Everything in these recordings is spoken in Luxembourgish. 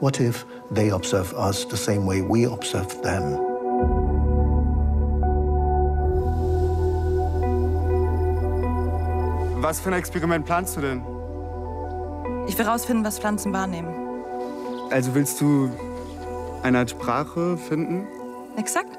What if they observe us the same way we observe them? Was für ein Experiment planst du denn? Ich will rausfinden, was Pflanzen wahrnehmen. Also willst du eine Art Sprache finden? Exakt.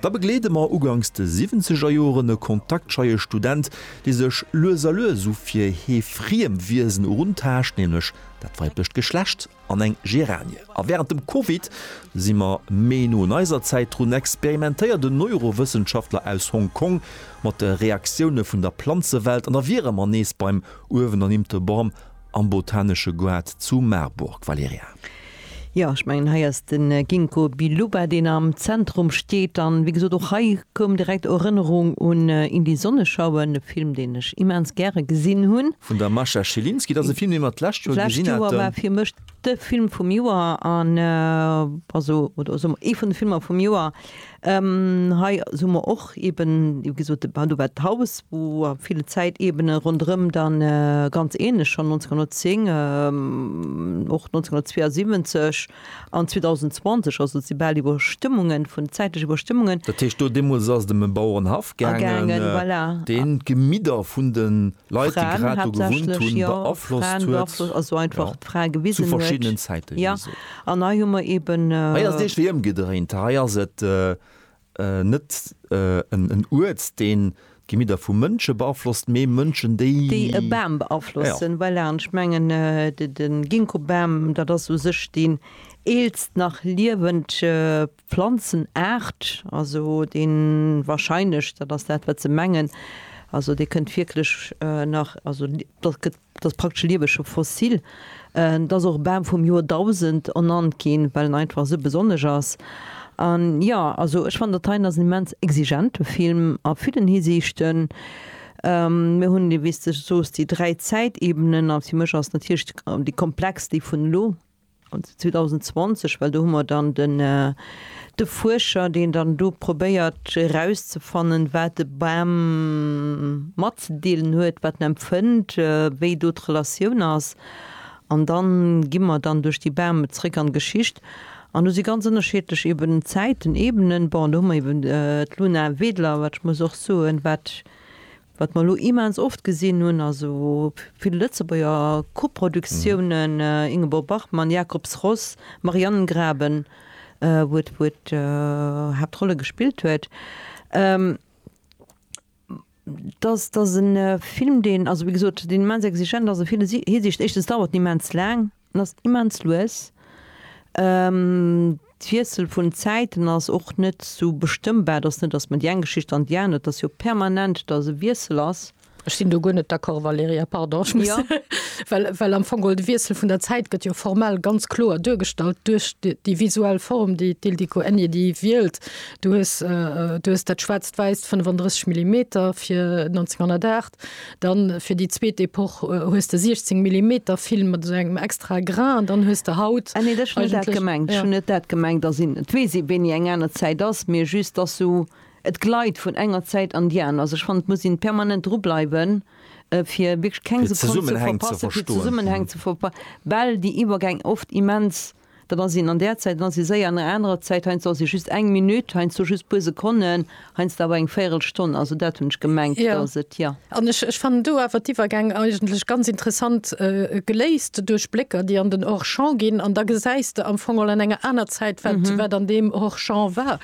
Da begleede mer uganks de siwwenzeger Joren e kontaktscheie Student, dee sech lues a lues u fir hie friem Wiesen eruntaascht, nämlech dat weiblecht Geschlecht an eng Geranie. A wärend dem Covid si mer méi no un eiser Zäit drun, experimentéiert en Neurowëssenschaftler aus Hong Kong mat de Reaktioune vun der Planzewelt an da wiere mer nees beim uewenernimte Borm Am Botanesche Goart zu Marburg, Valerija. Jo, ech mengen hei ass de Ginkgo biloba deen am Zentrum steet. An wéi gesot och hei koum direkt Erënnerung un In die Sonne schauen, e Film deen ech immens gäre gesinn hunn. Vun der Mascha Schilinski, dat ass e Film deen mer d'lescht Joer gesinn haten. De Film vum Joer an also oder soe mer ee vun de Filmer vum Joer. Hei soe mer och eeben, wéi gesot, de Badu war d'Haus, wou a ville Zäiteebene ronderëm dann ganz ähnlech schonn 1910, och 1972 an 2020, also et si bal Iwwerstëmmungen vun, zäitlech Iwwerstëmmungen. Dat heescht do deemools ass et ëm e Bauerenhaff gaangen, deen d'Gemidder vun de Leit, déi grad do gewunnt hunn, beaflosst huet, jo, zu verschiddenen Zäite, wéi gesot. Hei ass et eescht wéi ëmgedréint. Hei ass et net en Uert, deen d'Gemieder vu Mënsche beaflosst, mee Mënschen, déi. Déi e Bam beaflossen, voilà. An ech mengen, de Ginkgobam, dat ass u sech deen eelst nach liewend Planzenaart, also dee wahrscheinlech, dat ass dat, wat se mengen, also dee kënnt wierklech nach, also dat gëtt, dat ass praktesch lieweg, scho fossil. Et ass och Bam vum Joerdausend ernannt ginn, well en einfach esou besonnesch ass. An jo, also ech fannen, dat hei ass en immens exigente Film a villen Hisiichten. Mir hunn, wéi s de soos, déi dräi Zäitebenen, a fir mech ass natierlech déi komplexst déi vun elo, An 2020, well do hu mer dann de Fuerscher, deen dann do probéiert erauszefannen, wat de Bam matzedeelen huet, wat en empfënnt, wéi do d'Relatioun ass. An da gi mer dann duerch déi Bäume zréck an d'Geschicht. An do si ganz ënnerschiedlech eeben Zäiten, Ebenen. Bon, do hu mer eeben d'Luna Wedler, wat ech muss och soen, wat Wat mer elo immens oft gesinn hunn, also vill Lëtzebuerger Koproduktiounen, Ingeborg Bachmann, Jacob's Ross, Marianengraben, wou et d'Haaptrolle gespillt huet, dass, dass e Film, deen, also wéi gesot, deen immens exigent ass a vill Hisiicht, éischtens dauert en immens laang, En ass immens lues. D'Wiessel vun den Zäiten ass och net sou bestëmmbar. Et ass net, datt mer déi eng Geschicht an déi aner, et ass jo permanent, datt e Wiessel ass. Ech sinn do guer net d'accord, Valerija, pardon. Ech muss, well, well am Fong geholl de Wiessel vun der Zäit gëtt jo formell ganz kloer duergestallt duerch déi visuell Form, déi d'Ildiko Enyedi déi wielt. Du hues, du hues dat schwaarzt-wäisst 35 Millimeter fir 1908, dann fir déi zweet Epoch äh, hues de 16 Millimeter Film mat esou engem extra Grain an dann hues de haut Ah nee, dat schon net dat Eigentlech- gemengt. Ja. Ja. Schon net dat gemengt, da sinn et weess ee wéini eng aner Zäit ass, mee just dass sou et gleit vun enger Zäit an déi aner. Also ech fannen et muss een permanent dru bleiwen äh, fir wierklech keng Fir Sekonn ze Zesummenhäng ze verpassen, fir verstoen. Zesummenhäng ze verpa well déi Iwwergäng oft immens Dann ass een an där Zäit, dann ass ee séier an enger anerer Zäit, heiansdo ass ee just eng Minutt, heiansdo just puer Sekonnen, heiansdo awer eng Véirelstonn. Also dat hunn ech gemengt, datt et, jo. An ech fannen do awer d'Iwwergäng eigentlech ganz interessant geléist duerch Blécker, déi an den Hors-champ ginn, an da gesäis de am Fong all an enger aner Zäit, wat an deem Hors-champ war.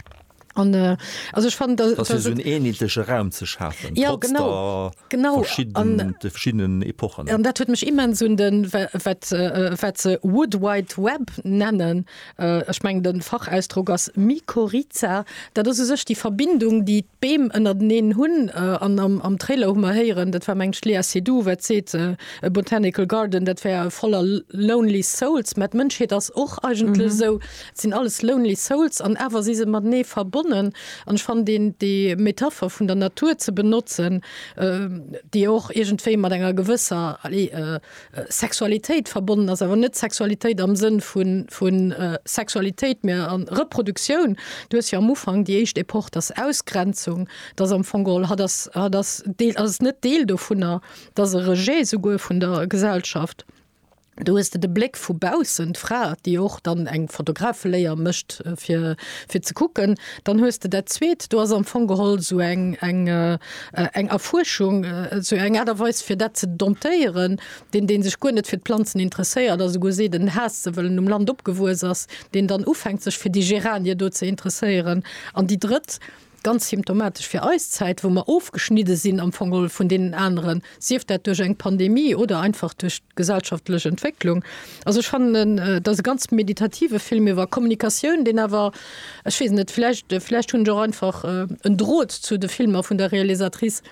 An äh, also ech fand, dass, dass dass so en enheetleche Raum ze schafen, ja, trotz genau, der genau. Verschieden, an, de verschiedenen Epochen. An dat huet mech immens un den wat wat se Wood Wide Web nennen. Äh, ech meng den Fachausdruck ass Mykorrhiza. Dat ass u sech déi Verbindung déi d'Beem ënnerteneen hunn. Äh, an am, am Trailer hu mer héieren, dat war meng ech Léa Seydoux wat seet, äh, e Botanical Garden dat wär voller lonely souls. Mä d'Mënschheet ass och eigentlech mhm. esou. Et sinn alles lonely souls an awer si se matenee verbonnen. An ech fannen deen déi Metapher vun der Natur ze benotzen, déi och iergendwéi mat enger gewësser, allez, Sexualitéit verbonnen ass, awer net Sexualitéit am Sënn vu Sexualitéit, mä Reproduktioun. Du hues jo am Ufank déi éischt Epoch, dat ass Ausgrenzung, dat ass am Fong geholl, hatt ass, hatt ass Deel, ass et net Deel dovunner, dat ass e Rejet souguer vun der Gesellschaft. Do hues de de Bléck vu baussen, d'Fra, déi och dann eng Fotografeléier mécht, fir, fir ze kucken. Dann hues de dat Zweet, do ass am Fong geholl esou eng, eng, eng Erfuerschung, esou eng Aart a Weis, fir dat ze domptéieren. Deen, dee sech guer net fir d'Planzen interesséiert a souguer seet, en haasst se, well en um Land opgewuess ass, deen dann ufänkt, sech fir déi Geranie do ze interesséieren. An déi Drëtt, Ganz symptomatesch fir eis Zäit, wou mer ofgeschnidde sinn am Fong geholl vun deenen aneren, sief dat duerch eng Pandemie oder einfach duerch d'gesellschaftlech Entwécklung. Also ech fannen, et ass e ganz meditative Film iwwer Kommunikatioun, deen awer, ech weess net, vläicht, vläicht hunn ech och einfach en Drot zu de Filmer vun der Realisatrice,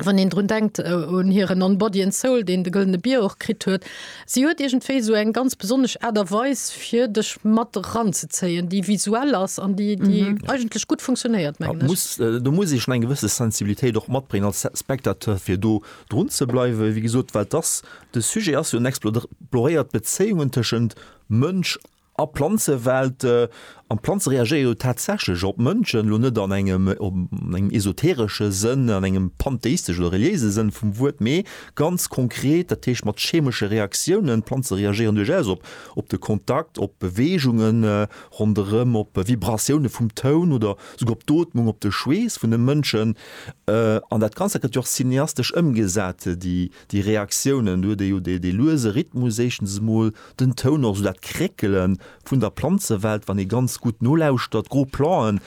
Wann een drun denkt un hiren On Body and Soul, deen de Gëllene Bier och kritt huet. Si huet iergendwéi esou eng ganz besonnesch Aart a Weis, fir dech mat eranzezéien, déi visuell ass an déi eigentlech gutt funktionéiert, mengen ech. Do muss ee schonn eng gewësse Sensibilitéit och matbréngen als Spectateur, fir do drun ze bleiwen, wéi gesot, well dass de Sujet ass jo en exploréiert d'Bezéiungen tëschent Mënsch A Planzewelt, an d'Planze reagéiere jo tatsächlech op d'Mënschen, elo net an engem esoteresche Sënn, an engem pantheistesche oder reliéise Sënn vum Wuert, mee ganz konkret, dat heescht mat chemesche Reaktiounen. D'Planze reagéieren duerchaus op de Kontakt, op Beweegunge ronderëm, op Vibratioune vum Toun oder souguer op d'Ootmung, op de Schweess vun de Mënschen. An dat Ganzt, dat gëtt jo och cineastesch ëmgesat. Déi Reaktiounen, do huet ee jo dee luese Rhythmus éischtens emol, den Toun och, esou dat Kréckele vun der Planzewelt, wann ee ganz gutt nolauschtert, gro Planten,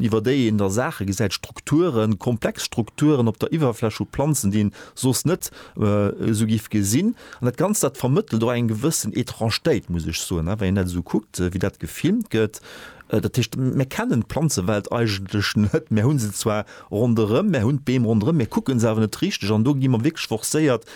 iwwer déi een da Saache gesäit, Strukturen, komplex Strukturen op der Iwwerfläch vu Planzen, déi een soss net esou giff gesinn. An dat Ganzt, dat vermëttelt och eng gewëssen Étrangetéit, muss ech soen, wa een dat esou kuckt, wéi dat gefilmt gëtt. Dat heescht, mir kennen d'Planzewelt eigentlech net, mir hu se zwar, Ronderëm, mär hunn d'Beem ronderëm, mir kucke se awer net richteg an do gi mer wierklech forcéiert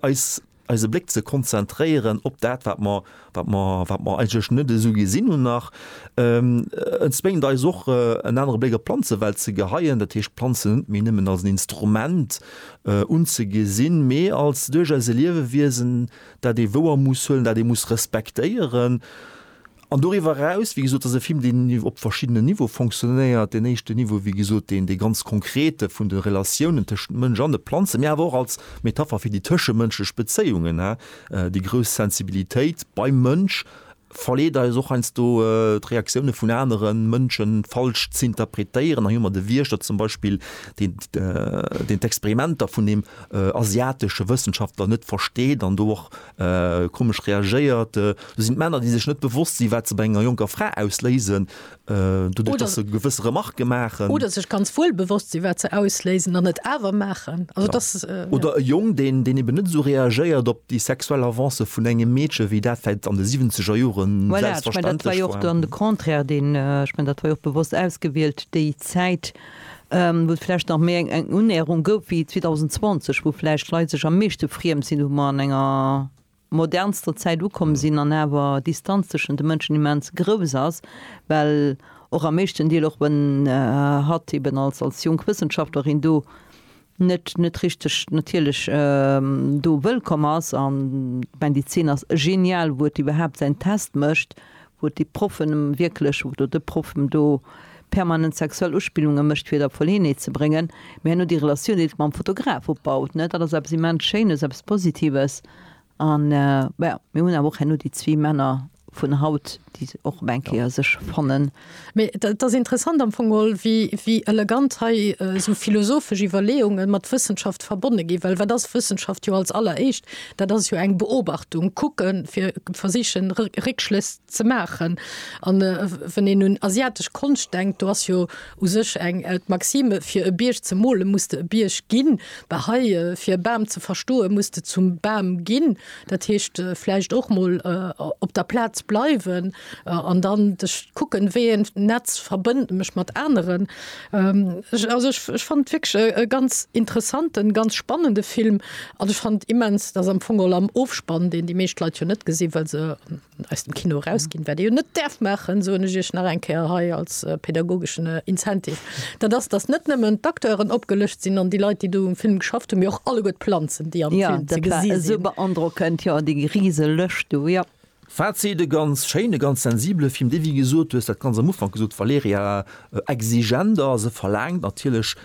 eis eise Bléck ze konzentréieren op dat wat mer wat mer wat mer eigentlech net esou gesinn hunn nach. Et zwéngt eis och en anere Bléck op d'Planzewelt ze geheien, dat heescht d'Planzen net méi nëmmen als en Instrument unzegesinn, mee als duerchaus e Liewewiesen dat ee wouer muss huelen, dat ee muss respektéieren. An doriwwer eraus, wéi gesot, ass e Film, deen op verschiddenen Niveaue fonctionnéiert. Deen éischten Niveau, wéi gesot, deen, dee ganz konkrete vun de Relatiounen tëschent Mënsch an de Planzen, mee awer och als Metapher fir déi tëschemënschlech Bezéiungen. Déi grouss Sensibilitéit beim Mënsch verleet eis och heiansdo, d'Reaktioune vun anere Mënsche falsch z'interpretéieren. Hei hu mer de Wiechter zum Beispill, deen, deen d'Experimenter vun deem asiatesche Wëssenschaftler net versteet an do och Komesch reagéiert. Do sinn d'Männer, déi sech net bewosst sinn, wat se bei enger jonker Fra ausléisen, doduerch, dass se gewësse Remarke maachen. Oder sech ganz wuel bewosst sinn, wat se ausléisen an et awer maachen. Also dass, ja. Oder e Jong, deen, deen eben net esou reagéiert op déi sexuell Avancë vun engem Meedche wéi dat vläicht an de siwwenzeger Joren selbstverständlech war. Voilà, ech menn, dat war jo och dann de Contraire, deen, ech menn, dat war jo och bewosst ausgewielt, déi Zäit. wou et vläicht nach méi eng Unnäherung gouf wéi 2020, wou vläicht d'Leit sech am meeschte friem sinn, wou mer an enger modernster Zäit ukomm sinn an awer d'Distanz tëschent de Mënschen immens grouss ass, well och am meeschten Deel, och wann hatt eeben als jonk Wëssenschaftlerin do net net richteg natierlech do wëllkomm ass an ech mengen déi Zeen ass genial wou et iwwerhaapt säin Test mécht wou et déi Proffen em wierklech oder de Proff em do permanent sexuell Uspillunge mécht fir et a Verleeënheet ze bréngen mee herno déi Relatioun déi et mam Fotograf opbaut ne dat ass eppes immens Schéines eppes Positives an jo mir hunn awer och herno déi zwee Männer vun haut, déi se och op eng Kéier sech fannen. Mee et ass interessant am Fong geholl, wéi elegant hei esou philosophesch Iwwerleeunge mat Wëssenschaft verbonne ginn. Well wat ass Wëssenschaft jo als alleréischt? Dat ass jo eng Beobachtung, kucken, fir versichen, Réckschlëss ze maachen. A wann een un asiatesch Konscht denkt, do ass jo u sech eng d'Maxime, fir e Bierg ze mole muss de e Bierg ginn. Bah hei, fir e Bam ze verstoe muss de zum Bam ginn. Dat heescht vläicht och mol op der Plaz bleiwen an dann kucken, wéi een Netz verbënnt mech mat aneren. Also ech fand wierklech e ganz interessanten, ganz spannende Film an ech fand immens, dass am Fong och am Ofspann, deen déi meescht Leit jo net gesinn, well se Aus dem Kino erausginn, wat ee jo net däerf maachen, soen ech Iech nach eng Kéier hei als pädagogeschen Incentive, dat ass, datt net nëmmen d'Acteuren opgelëscht sinn an déi Leit, déi do um Film geschafft hunn, mee och alleguer d'Planzen, déi am Film ze gesi sinn. Jo, dat war esou beandrockend, jo, déi rise Lëscht do, jo. Fazit, E ganz schéinen, e ganz sensibele Film, dee, wéi gesot, du hues dat ganz am Ufank gesot, Valerija, exigent ass. E verlaangt natierlech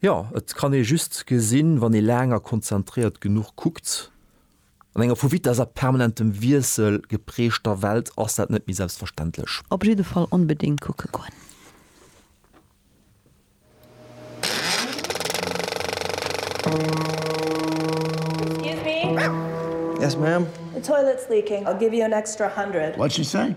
Jo, et kann ee just gesinn, wann ee laang a konzentréiert genuch kuckt. An enger vu Vitess a permanentem Wiessel geprägter Welt ass dat net méi selbstverständlech. Op jidde Fall onbedéngt kucke goen. Excuse me. Yes ma'am. The toilet's leaking, I'll give you an extra hundred. What'd she say?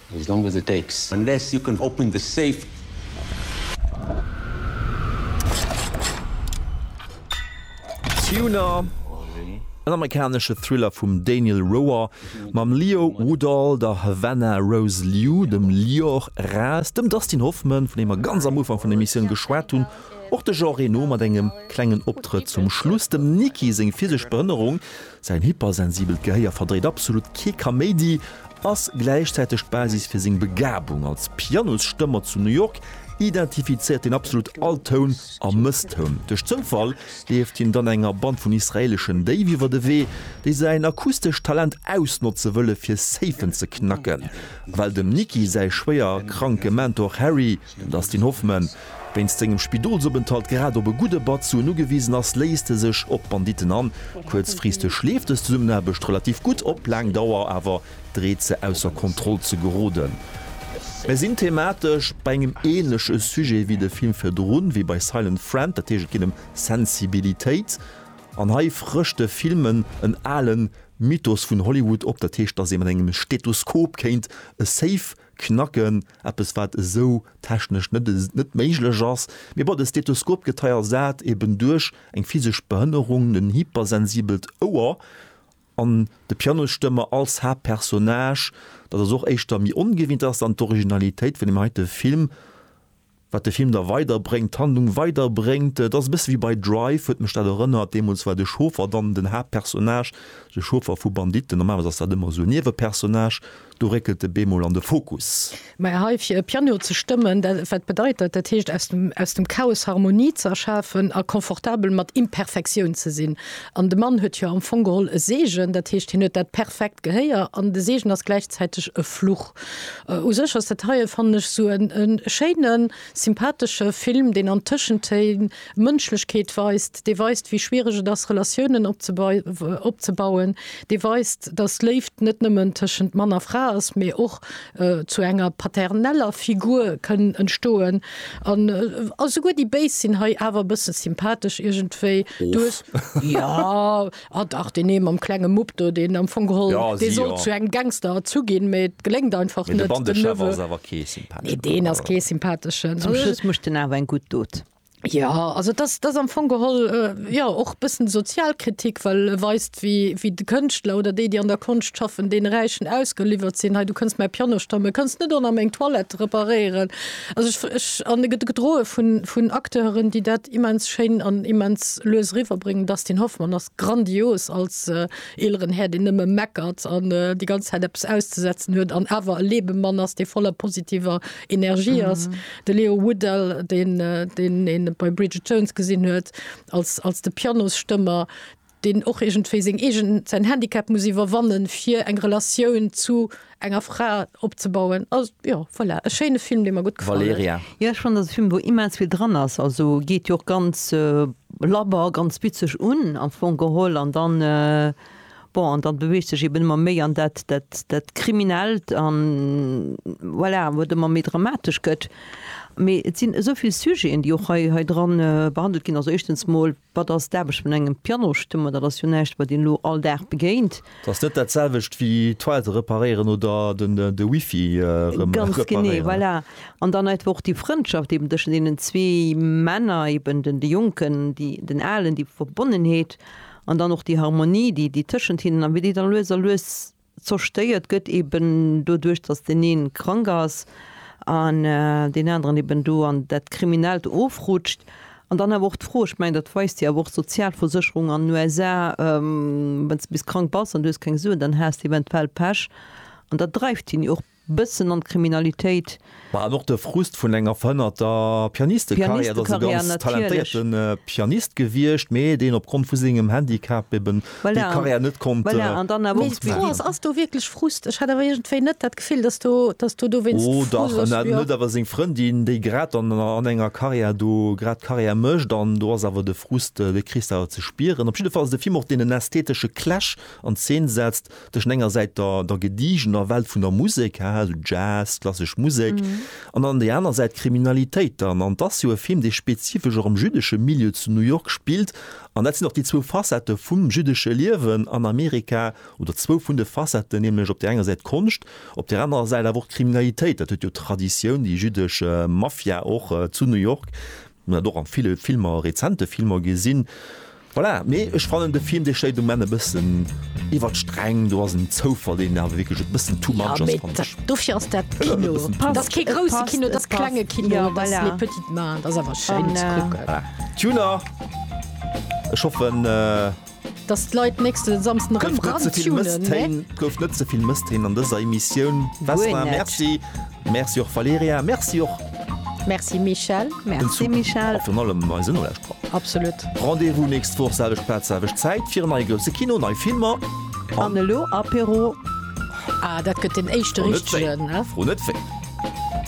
As long as it takes. Unless you can open the safe. Tuner, en amerikanesche Thriller vum Daniel Roher mam Leo Woodall, der Havana Rose Liu, dem Lior Raz, dem Dustin Hoffman, vun deem mer ganz am Ufank vun der Emissioun geschwat hunn, och de Jean Reno mat engem klengen Optrëtt zum Schluss, dem Niki seng physesch Behënnerung, Säin hypersensibelt Gehéier verdréit absolut kee Kaméidi, ass gläichzäiteg d'Basis fir seng Begabung als Pianosstëmmer zu New York, identifizéiert hien absolut all Toun a Mësstoun. Duerch Zoufall leeft hien dann enger Band vun israeleschen Déif iwwer de Wee, déi säin akustescht Talent ausnotze wëlle fir Safën ze knacken. Well dem Nicky säi schwéier kranke Mentor Harry, Den Dustin Hoffman, wéinst sengem Spidolsopenthalt grad op e gudde Batt Suen ugewisen ass, léisst e sech op d'Banditten an. Kuerzfristeg leeft dës Zesummenaarbecht relativ gutt, op laang Dauer awer dreet se ausser Kontroll ze geroden. Mir sinn thematesch bei engem änleche Sujet wéi de Film virdrun, wéi bei Silent Friend, dat heescht et geet ëm Sensibilitéit an hei frëscht de Film en ale Mythos vun Hollywood op, dat heescht, dass ee mat engem Stethoskop kéint e Safe Knacken, eppes wat esou technesch net méiglech ass, mee bon, de Stethoskopgetei ersat eben duerch eng physesch Behënnerung en hypersensibelt Ouer an de Pianosstëmmer als Haaptpersonnage, dat ass och éischter méi ongewinnt, dat ass dann d'Originalitéit vun deem heite Film. wat de Film da weider bréngt, d'Handlung weider bréngt. Et ass e bësse wéi bei Drive, huet mech dat erënnert. Deemools war de Chauffer dann den Haaptpersonnage, de Chauffer vu Banditten. Normalerweis ass dat ëmmer esou e Niewepersonnage. Do réckelt e bemol an de Fokus. Mä hei fir e Piano ze stëmmen, dat, wat bedeit dat? Dat heescht, aus dem, aus dem Chaos Harmonie ze erschafen a confortabel mat Imperfektioun ze sinn. An de Mann huet jo am Fong geholl e Seegen, dat heescht, hien huet dat perfekt Gehéier an de Seegen ass gläichzäiteg e Fluch. U sech ass dat heien, fannen ech, esou e schéine sympathesche Film, deen an Tëschentéin Mënschlechkeet weist, dee weist, wéi schwiereg et ass, Relatiounen opzebauen, dee weist, datt Léift net nëmmen tëschent Mann a Fra ass, mee och zu enger paterneller Figur kënn entstoen. An esouguer déi Béis sinn hei awer e bësse sympathesch iergendwéi. Du hues, jo. Ah dach, deen ee mam klenge Mupp do, deen am Fong geholl, dee sollt zu engem Gangster erzu ginn, mee et geléngt einfach net. De Bandechef ass awer kee sympatheschen. Nee, deen ass kee sympatheschen. Zum Schluss mécht en awer eng gutt Dot. Jo, also dat ass am Fong geholl, jo, och e bëssen Sozialkritik, well e weist, wéi de Kënschtler oder déi, déi an der Konscht schaffen, deene Räichen ausgeliwwert sinn. Hei, du kënns mäi Piano stammen, kënns net och nach meng Toilette reparéieren. Also ech an e gedroe vun vun Acteuren, déi dat immens schéin an immens lues eriwwerbréngen. Dustin Hoffmann ass grandios als eeleren Här, deen nëmme meckert an déi ganz Zäit eppes auszesetzen huet an awer e Lebemann ass, dee voller positiver Energie ass. De Leo Woodell, deen deen een bei Bridget Jones gesinn huet als als de Pianosstëmmer. deen och iergendwéi seng eegen, säin Handicap muss iwwerwannen, fir eng Relatioun zu enger Fra opzebauen. Also jo, voilà, e schéine Film, dee mer gutt gefall huet. Valerija. Jo, ech fannen, dat ass e Film, wou immens vill dran ass. Also geet jo och ganz labber, ganz bitzeg un, am Fong geholl. An dann, bon, an dann beweegt sech eben ëmmer méi an dat, dat, dat Kriminellt an, voilà, wou et ëmmer méi dramatesch gëtt. Mee et sinn esou vill Sujeten, déi och hei, hei dran behandelt ginn. Also éischtens mol. Wat ass d'Aarbecht vun engem Pianostëmmer? Dat ass jo näischt, wat een elo all Dag begéint. Dat ass net dat selwecht wéi d'Toilette reparéieren oder de Wifi erëm reparéieren. An dann einfach och déi Frëndschaft eben tëschent deenen zwee Männer, eben de Jonken, den Alen, déi Verbonnenheet an dann och déi Harmonie, déi tëschent hinnen a wéi déi da lues a lues zerstëiert gëtt, eben doduerch, dass deen een krank ass an deen aneren eben do an dat Kriminellt ofrutscht. An dann awer och d'Fro, ech mengen, dat weist jo awer och d'Sozialversécherung an den USA, Wann s de bis krank bass an du hues keng Suen, dann has de eventuell Pech. An dat dreift hien jo och. bëssen an d'Kriminalitéit. Mä an och de Frust vun enger verhënnerter Pianistekarriär. Et ass e ganz talentéierte Pianist gewiescht, mä deen opgrond vu sengem Handicap eben déi Karriär net konnt. Mee d'Fro ass, ass do wierklech Frust? Ech hat awer iergendwéi net dat Gefill, datt do, datt do dowéinst Frust ass. Oh dach, en hat net awer seng Frëndin, déi grad dann an enger Karriär do grad Karriär mécht. An do ass awer de Frust, dee kriss de awer ze spieren. Op jidde Fall ass et e Film och, deen en ästhetesche Clash an Zeen setzt. tëschent enger Säit der, der gedigener Welt vun der Musek, haha, esou Jazz, klassesch Musek, an dann déi aner Säit d'Kriminalitéit dann. An et ass jo e Film, dee spezifesch och am jüddesche Milieu zu New York spillt. An dat sinn och déi zwou Facettë vum jüddesche Liewen an Amerika, oder zwou vun de Facetten, nämlech op där enger Säit d'Konscht, op där anerer Säit awer och d'Kriminalitéit. Dat huet jo d'Traditioun, déi jüddesch Mafia och zu New York, dat och a ville Filmer, rezente Filmer gesinn. Voilà, nee ech fannen de Film dee schéit um Enn e bëssen iwwer d'Sträng, do ass en Zoufall deen awer wierklech e bëssen too much ass fannt ech. Dofir ass dat Kino, dat ass kee grousse Kino, dat ass klenge Kino, dat ass les petites mains, dat ass awer schéin ze kucken. Tuner, ech hoffen. Dass d'Leit nächste Samsden erëm dran tunen, ne? Gouf net ze vill Mësstéin an dëser Emissioun. Merci. Merci och Valerija, merci och. Merci Michèle, merci Michèle. A virun allem eise Nolauschterer. Absolut. Rendez-vous nächst Woch, selwecht Plaz, selwecht Zäit, fir en neie grousse Kino, nei Filmer. An elo Apéro. Ah, dat gëtt den éischte richtegen, ne? Fro net wéi.